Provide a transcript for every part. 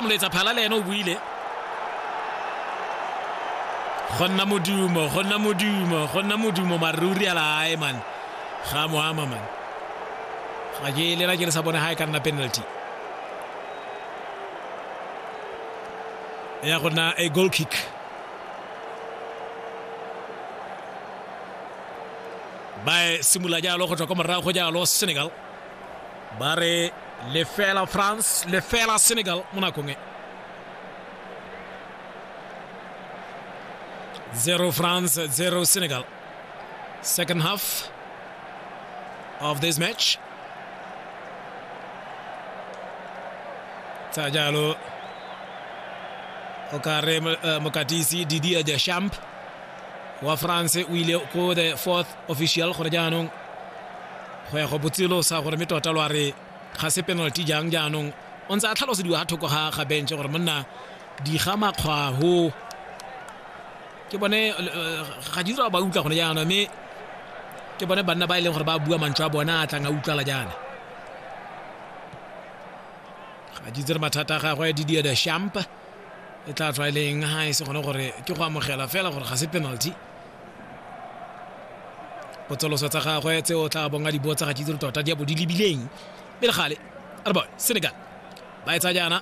moletsa phala le ene o buile go nna modumo go nna modumo go nna modumo maruri a lae man ga mo ama man ga ke lela ke le sa bone ga e ka nna penalty ya go nna a goal kick ba simolola jalo go tswa kwa morago jalo senegal ba re lefela france lefela senegal mo nakong e zero france zero senegal second half of this match tsa jalo o ka re eh, mokatisi didia ja champ wa france o ile ko the fourth official gore jaanong go ya go botselo sa gore me tota lo a re ga se penalty jang jaanong o ntse a tlhalosediwa ga thoko ga ga bench gore monna diga makgwaho ke bone eh, ga di dira ba utlwa gone jaana mme ke bone banna ba e leng gore ba bua mantswe a bona a tlang a utlwala jaana ga di tsere mathata a gagwe didier de champ e tla tswa e le eng ga e se gone gore ke go amogela fela gore ga se penalty potsoloso tsa gagwe tse o tla bonga di botsa ga ke dire tota di a bo di lebileng pele gale a re bone senegal ba e tsa jaana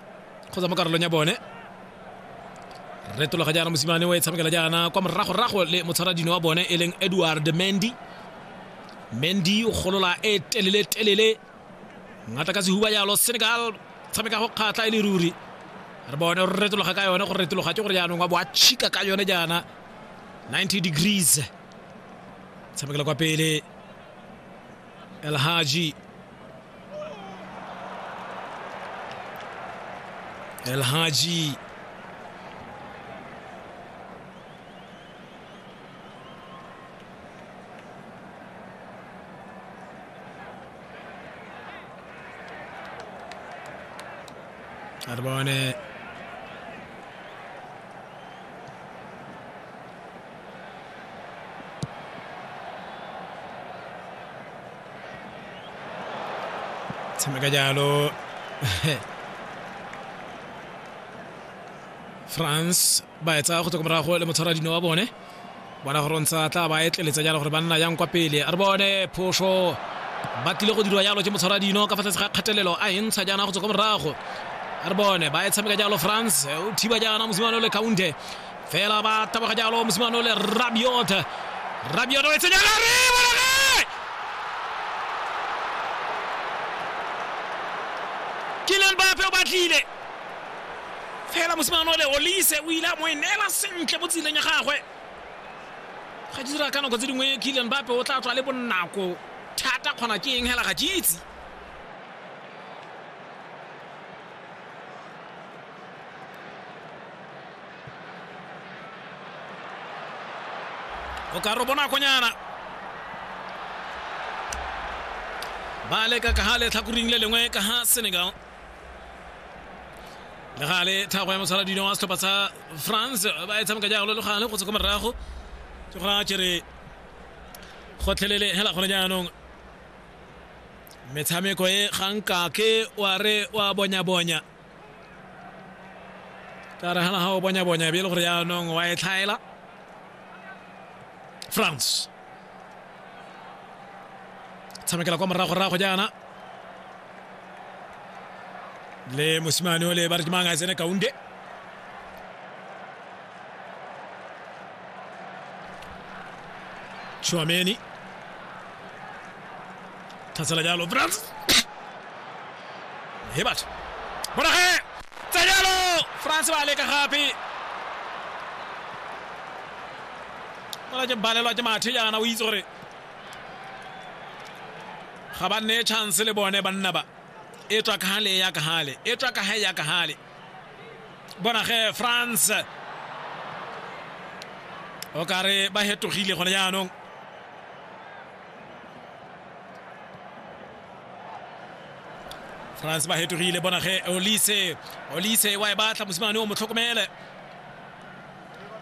kgotsa mo karolong ya bone retologa jaana mosimane o e tshamekela jaana kwa moragorago le motshwaradino wa bone e leng edward mendy mendy o golola e telele telele ngata ka sehuba jalo senegal tshameka go kgatlha e le ruri re bone re retologa ka yone go retologa ke gore jaanong wa bo a chika ka yone jaana 90 degrees tshamekela kwa pele elhaji elhaji Arbone. Sembra Gaglialo. France ba e tsaya go tswa ko morago le motshwara dino wa bone bona gore ntsa tla ba etleletsa jalo gore ba nna yang kwa pele a re bone phoso ba tlile go dirwa jalo ke motshwara dino ka fa tlase ga kgatelelo a e ntsha jaana go tswa ko morago a re bone ba e tshameka jalo france o thiba jaana mosimane le counte fela ba taboga jalo mosimane le rabiot rabiot o e tsenya lare Kylian Mbappe o batlile fela mosimane ole olise o ile a mo e neela sentle mo tseleng ya gagwe ga ke dira ka nako tse dingwe killian bape o tla tswa le bonako thata kgona ke eng hela ga ke itse o ka re bonakonyana ba leka ka ga letlhakoring le lengwe ka ga senegal le gale thago ya mosala dino wa setlhopha sa france ba e tshameka jalo le gale go tswa ko morago ke gona kere gotlhelele hela gone jaanong metshameko e ganka ke wa re wa bonya-bonya ka re gana ga o bonya-bonya be e le gore jaanong wa e tlhaela france tshamekela kwa moragorago jaana le mosimane o le ba re ke mang a tsene kaunde Chouameni. Tatsela jalo Brans. He batho. Bona ge. Tsa jalo France ba leka gape. fela ke balelwa ke mathe jaana o itse gore ga ba nne chance le bone banna ba e tswa ka gale ya ka gale e tswa ka gae ya ka gale bona ge france o ka re ba hetogile gone jaanong france ba hetogile bona ge olise olise wa e batla mosimane o mo tlhokomele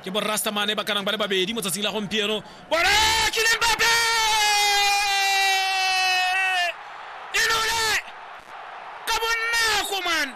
ke borastamane ba kanang ba le babedi mo tsatsing la gompieno bora kileng bape e lole ka bonako man